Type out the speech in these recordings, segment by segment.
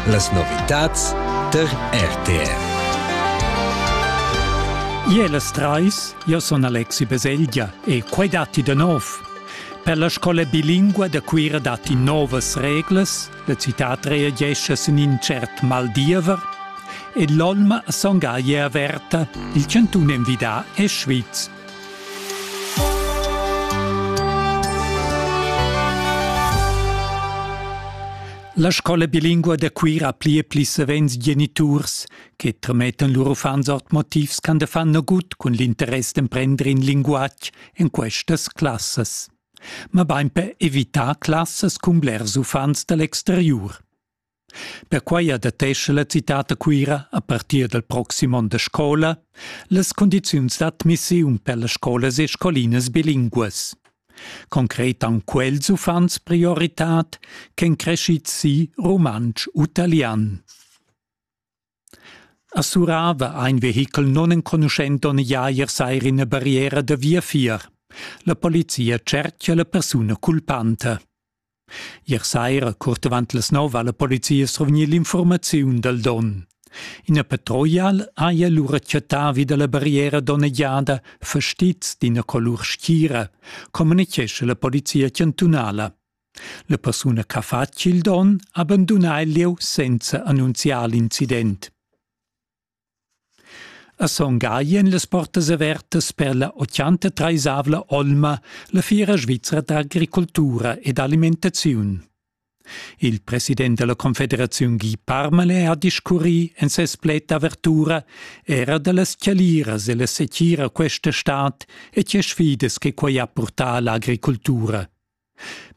Las novitads tar RTR. Ie las trais, io son Alexi Beselgia e quai datti da nov. Per la scola bilingua da Cuira datti novas reglas, la citat reagesce sin in cert maldiever e l'olma songa ie averta, il chantun envidà è Schwyz. La scola bilingua da Cuira ha pli e pli savens geniturs che tramettan lur uffants ord motivs ch'han da far nagut cun l'interess d'emprender in linguatg en questas classas. Ma bain per evitar classas cun blers uffants dal exteriur. Perquai adattescha la citad da Cuira a partir dal proxim onn da scola las cundiziuns d'admissiun per las scolas e scolinas bilinguas. Concret han quels uffants prioritad ch'èn creschids si rumantsch u talian. A Surava ha in vehichel nunenconuschento negiair sair ina barriera da viafier. La polizia tschertga la persuna culpanta. Ier saira, curt avant las nov, ha la polizia survgni l'informaziun dal don. Ina patruglial haja lura chattà vi da la barriera donnegiada fastizs d'ina colur schira, communitgescha la polizia chantunala. La persuna ch'ha fatg il donn ha bandunà il lieu senza annunziar l'incident. A Son Gagl èn las portas avertas per la 83esavla olma, la fiera svizra d'agricoltura ed alimentaziun. Il president della Confederaziun Guy Parmelin ha discurrì en ses pled d'avertura era da las chaliras e la setgira questa stad e tge sfidas che quai ha purtà all'agricoltura.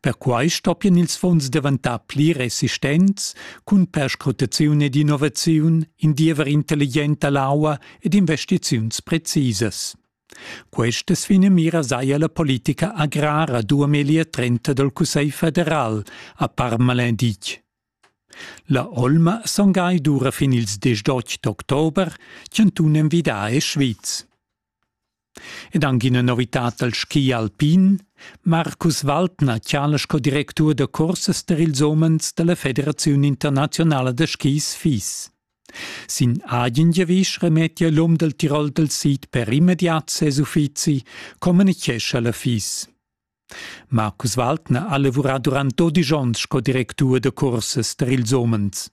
Perquai stoppien ils fonds daventar pli resistents cun perscrutaziun ed innovaziun, in diever intelligent dall'aua ed investiziuns precisas. Questas finamiras haja la politica agrara duameglia trenta dal Cussegl federal a Parmalin ditg. La olma songai dura fin ils 18 d'october, chantun envidà è Schwyz. Ed anc ina novitad dal ski alpin. Markus Waldner chala sco directur da cursas per ils umens da la Federaziun internaziunala da skis FIS. Sin agen giavisch remettia l'um dal Tirol dal sid per immediat ses uffizi, communitgescha la FIS. Marcus Waltner ha lavurà durant dodisch onns sco directur da cursas tar ils umens.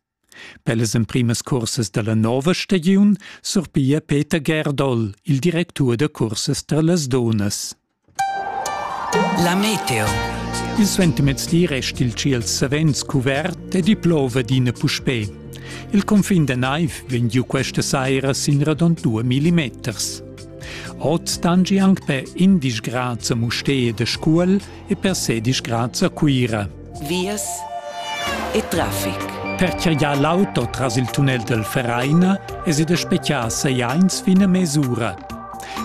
Per las emprimas cursas da la nova stagiun surpiglia Peter Gerdol il directur da cursas tar las dunnas. La meteo. Il suentermezdi resta il tschiel savens cuvert e di plova d'ina puspè. Il confin da naiv vegn giu questa saira sin radund 2 millimeters. Ot stangi anc per indisch grad a Mustee de Scuol e per sedisch grad a Cuira. Vias e traffic. Perche ja l'auto tras il tunnel del Vereina es ed specchà sei eins fin a mesura.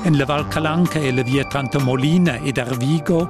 En la Val Calanca e la via Trantamolina ed Arvigo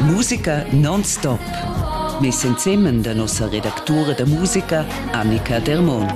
Musica non-stop. Mes ensemen da nossa redactura da musica Annika Dermon.